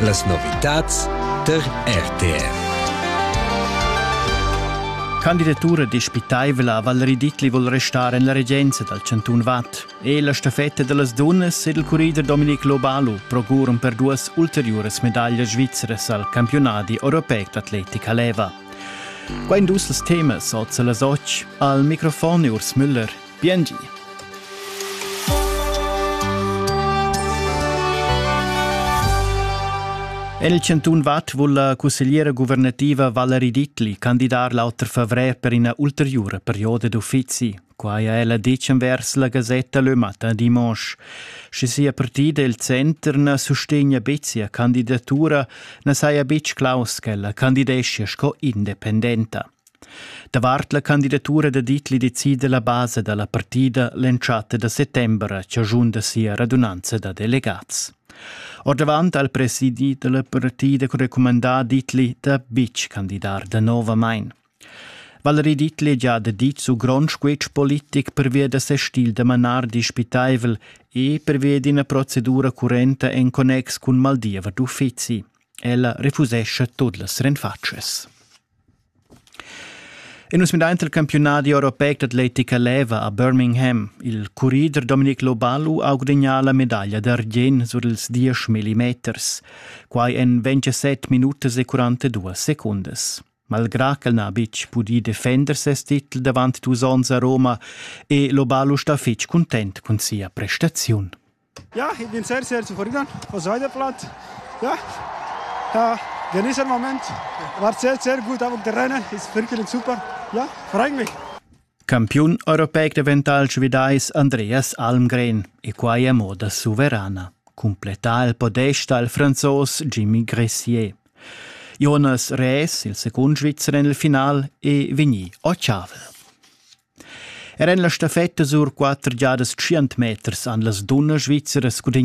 Las novitads tar RTF. Candidatura dispitaivla Valerie Dittli vul restar en la regenza dal chantun Vad. E la staffetta da las dunnas ed il currider Dominic Lobalu procuran per duas ulteriuras medaglias svizras al campiunadi europeic d'atletica leva. Qua in dus temas oz las otg. Al microfon Urs Müller Biengi. En il chantun Vad vul la cussegliera guvernativa Valerie Dittli candidar l'auter favrer per ina ulteriura perioda d'uffizi. Quai ha ella ditg envers la gasetta Le Matin dimanche. Sche sia partida il center na sustegna betg sia candidatura, na saja betg claus ch'ella candideschia sco independenta. Davart la candidatura da Dietli decida la basa da la partida l'entschatta da settember a chaschun da sia radunanza da delegats. Ordavant al presidi da la partida recumandà Dietli da betg candidar danovamain. Valerie Dietli già da dit su grond squetsch politic pervia da ses stil da manar dispitaivel e pervia d'ina procedura currenta en connex cun Maldiva d'uffizi. Ella refusescha tot las renfatsches. E nus midaint il campiunadi europeic d'atletica leva a Birmingham. Il currider Dominic Lobalu ha gudagnà la medaglia d'argient sur ils diesch millimeters. Quai en 27 minutas e 42 secundas. Malgrà ch'el n'ha betg pudì defender ses titel davant dus onns a Roma, è Lobalu stà fitg cuntent cun sia prestaziun. Ja, ich bin sehr, sehr zufrieden. Was heute Blatt. Ja, ja genieße den Moment. War sehr, sehr gut am Terrain. Ist wirklich super. Ja, freue mich. Campiun europeic davental svidais Andreas Almgren e quai a moda suverana. Completa il podesta al franzos Jimmy Gressier. Jonas Rees, il secund svizzer nel final, è vegni a Chavel. Er en la staffetta sur quatter giadas tschient meters han las dunnas svizzeras gudignà